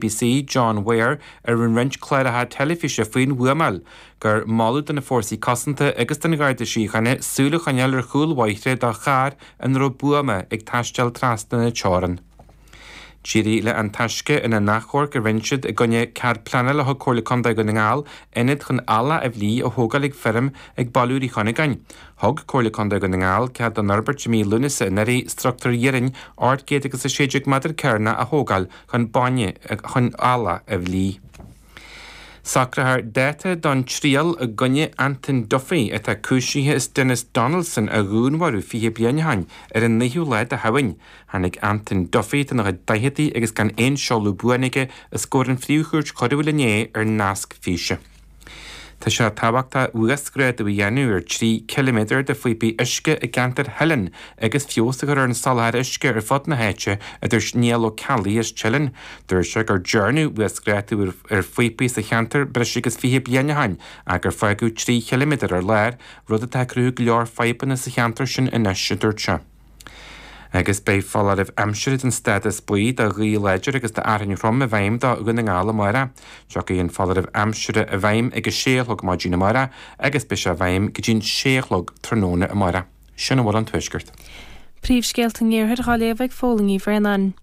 BBC John Ware a rinne roinnt cláracha teilifíse faoin bhuamáil gur moladh do na Fórsaí Cosanta agus don Gharda Síochána súil a choinneáil ar chúlbhóithre do charr ina raibh buama ag taisteal trasna na teorann. D'éirigh le An Taisce ina n-achomharc a rinne siad i gcoinne cead pleanála a thug Comhairle Contae Dhún na nGall ionad chun eallach a bhlí a thógáil ag feirm ag Baile Úr Uí Chuinneagáin. Thug Comhairle Contae Dhún na nGall cead don fhorbairt i mí Lúnasa anuraidh struchtúr de airde 816 meadar cearnach a thógáil chun bainne chun eallach a bhlí. Socrófar dáta don triail i gcoinne Antain Duffy atá cúisithe as Denis Donaldson a dhúnmharú fiche bliain ó shoin ar an naoú lá de Shamhain. Tháinig Antain Duffy atá ina chuid daichidí agus gan aon seoladh buan aige os comhair na Príomh-Chúirte Coiriúla inné ar nasc físe. Tá sé tábhachtach uasghrádú a dhéanamh ar 3 km de phíopaí uisce i gceantar Theilinn agus feabhas a chur ar an soláthar uisce ar fud na háite, a dúirt Niall Ó Ceallaigh as Teileann. Dúirt sé gur dearnadh uasghrádú ar phíopaí sa cheantar breis agus 20 bliain ó shin ach gur fágadh 3 km ar lár, rud atá ag cruthú go leor fadhbanna sa cheantar sin anois, a dúirt sé. Agus beidh foláireamh aimsire den stádas buí do ghaoth láidir agus d'fhearthainn throm i bhfeidhm do Dhún na nGall amárach. Tiocfaidh an foláireamh aimsire i bhfeidhm ag a sé a chlog maidin amárach agus beidh sé i bhfeidhm go dtí a sé a chlog tráthnóna amárach. Sin a bhfuil ón Tuaisceart. Príomhscéalta an Iarthair dhá léamh ag Phóilín Ní Bhraonáin.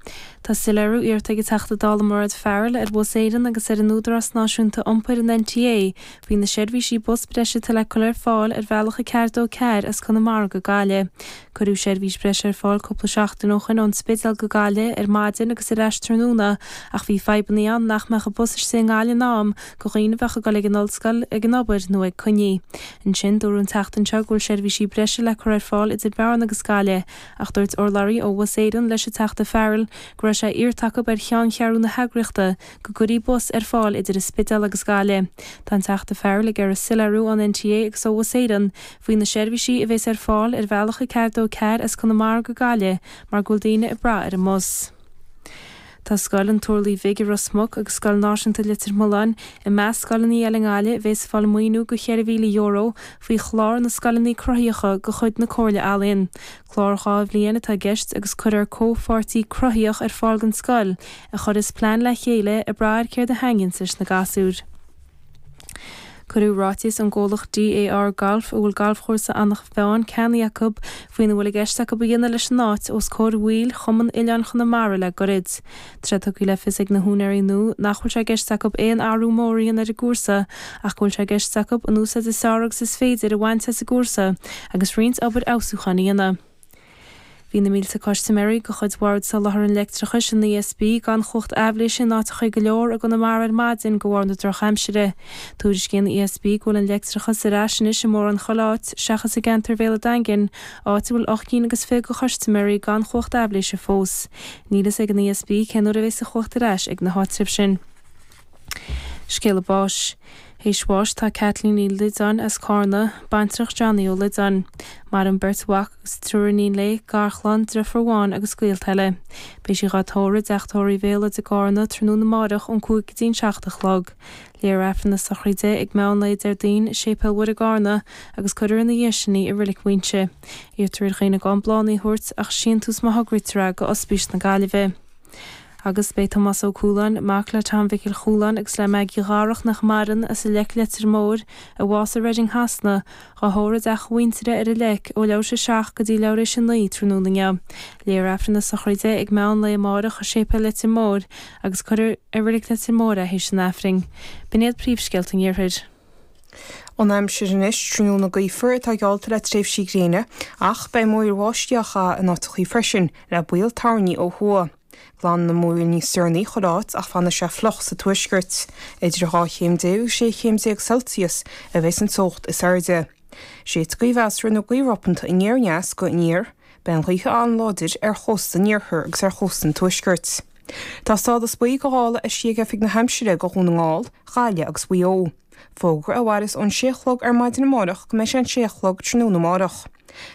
Tá soiléiriú iarrta ag an Teachta Dála Mairéad Farrell ar Bhus Éireann agus ar an Údarás Náisiúnta Iompair, an NTA, faoi na seirbhísí bus breise atá le cur ar fáil ar bhealach a 424 as Conamara go Gaillimh. Cuireadh seirbhís breise ar fáil cúpla seachtain ó shoin ón Spidéal go Gaillimh ar maidin agus ar ais tráthnóna ach bhí fadhbanna ann nach mbeadh an bus istigh i nGaillimh in am do dhaoine a bheadh ag dul ag an ollscoil, ag an obair nó ag coinní. Ansin dúradh an tseachtain seo go bhfuil seirbhísí breise le cur ar fáil idir Bearna agus Gaillimh ach dúirt urlabhraí ó Bhus Éireann leis an Teachta Farrell go raibh sé iarrtha acu ar cheanncheathrú na heagraíochta go gcuirfí bus ar fáil idir an Spidéal agus Gaillimh. Tá an Teachta Farrell ag iarraidh soiléiriú ón NTA agus ó Bhus Éireann faoi na seirbhísí a bheas ar fáil ar bhealach a ceathair dó ceathair as Conamara go Gaillimh mar go bhfuil daoine ag brath ar an mbus. Tá Scoil an Turlaigh Bhig i Ros Muc agus Scoil Náisiúnta Leitir Mealláin i measc scoileanna eile i nGaillimh a bheas ag fáil maoiniú de €4,000 faoi Chlár na Scoileanna Cruthaitheacha de chuid na Comhairle Ealaíon, Clár dhá bhliain atá i gceist agus cuirfear comhpháirtí cruthaitheach ar fáil don scoil, a chuirfeas plean le chéile ag brath ar céard a thaitníonn leis na gasúir. Cuireadh ráiteas ón gcomhlacht GAR Golf, a bhfuil galfchúrsa Anach Mheáin ceannaithe acu, faoina bhfuil i gceist acu a dhéanamh leis an áit, os comhair bhaill Chumann Oileáin Chonamara le goirid. Tá sé tugtha le fios ag na húinéirí nua nach bhfuil sé i gceist acu aon athrú mór a dhéanamh ar an gcúrsa ach go bhfuil sé i gceist acu an úsáid is fearr agus is féidir a bhaint as an gcúrsa agus roinnt obair fheabhsúcháin a dhéanamh. Bhí na mílte custaiméirí de chuid Bhord Soláthair an Leictreachais, an ESB, gan chumhacht aibhléise in áiteacha go leor i gConamara ar maidin de bharr na drochaimsire. Tuairiscíonn an ESB go bhfuil an leictreachas ar ais anois i mórán chuile áit, seachas i gceantar Bhéal an Daingin, áit a bhfuil ocht gcinn agus fiche de chustaiméirí gan chumhacht aibhléise fós. Níl fhios ag an ESB cén uair a bheas an chumhacht ar ais ag na háitribh sin. Scéala báis. Th'éis bháis tá Kathleen Lydon as Carna, baintreach Johnny Ó Loideáin. Maireann beirt mhac agus triúr iníon léi, garchlann, driofur amháin agus gaolta eile. Beidh sí dhá tórramh i dteach tórraimh Bhéalóideach i gCarna tráthnóna amárach ón cúig go dtí an seacht a chlog. Léifear Aifreann na Sochraide ag meán lae Déardaoin i Séipéal Mhuire i gCarna, agus cuirear ina dhiaidh sin í i Reilig Mhaínse. Iarrtar ar dhaoine gan bláthnaí a thabhairt ach síntús má thograítear é go Ospís na Gaillimhe. Agus beidh Tomás Ó Cualáin, mac le Tom Mhicil Chualáin agus le Maggie Dharach nach maireann, as an Leic, Leitir Móir, a bhásaigh i Reading Shasana, dhá thórramh i dteach a mhuintire ar an Leic, ó leathuair th'éis a seacht go dtí leathuair th'éis a naoi tráthnóna inniu. Léifear Aifreann na sochraide ag meán lae amáireach i Séipéal Leitir Móir agus cuirfear i reilig Leitir Móir é th'éis an Aifrinn. B'in iad príomhscéalta an Iarthair. An aimsir anois tráthnóna gaofar atá geallta le tréimhsí gréine ach beidh múr báistí in áiteachaí freisin le baol toirní ó thuaidh. Glanfaidh na múir níos deireanaí chuile áit ach fanfaidh sé fliuch sa tuaisceart. Idir dhá chéim déag agus sé chéim déag Celsius a bheas an teocht is airde. Is é gaoth mheasartha nó gaoth ropánta aniar aneas go aniar, Beidh an ghaoth an-láidir ar chósta an iarthair agus ar chósta an tuaiscirt. Tá stádas buí go ghála eisithe ag Oifig na hAimsire go Dhún na nGall, Ghaillimh agus Mhaigh Eo. Fógra a mhaireas ón 6 a chlog ar maidin amárach go mbeidh sé an 6 a chlog tráthnóna amárach.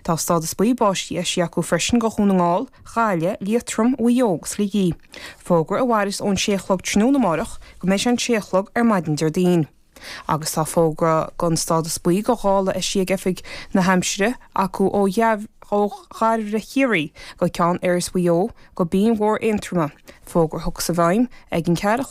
Tá stádas buí báistí eisithe acu freisin go Dhún na nGall, Ghaillimh, Liatroim, Mhaigh Eo agus Shligeach. Fógra a mhaireas ón 6 a chlog tráthnóna amárach go mbeidh sé an 6 a chlog ar maidin Déardaoin. Agus tá fógra gon stádas buí go ghála eisithe ag Oifig na hAimsire acu ó Dhairbhre Chiarraí go Ceann Iorrais Mhaigh Eo go Binn Mhór Aontroma, fógra a thiocfas i bhfeidhm ag an ceathair a chlog.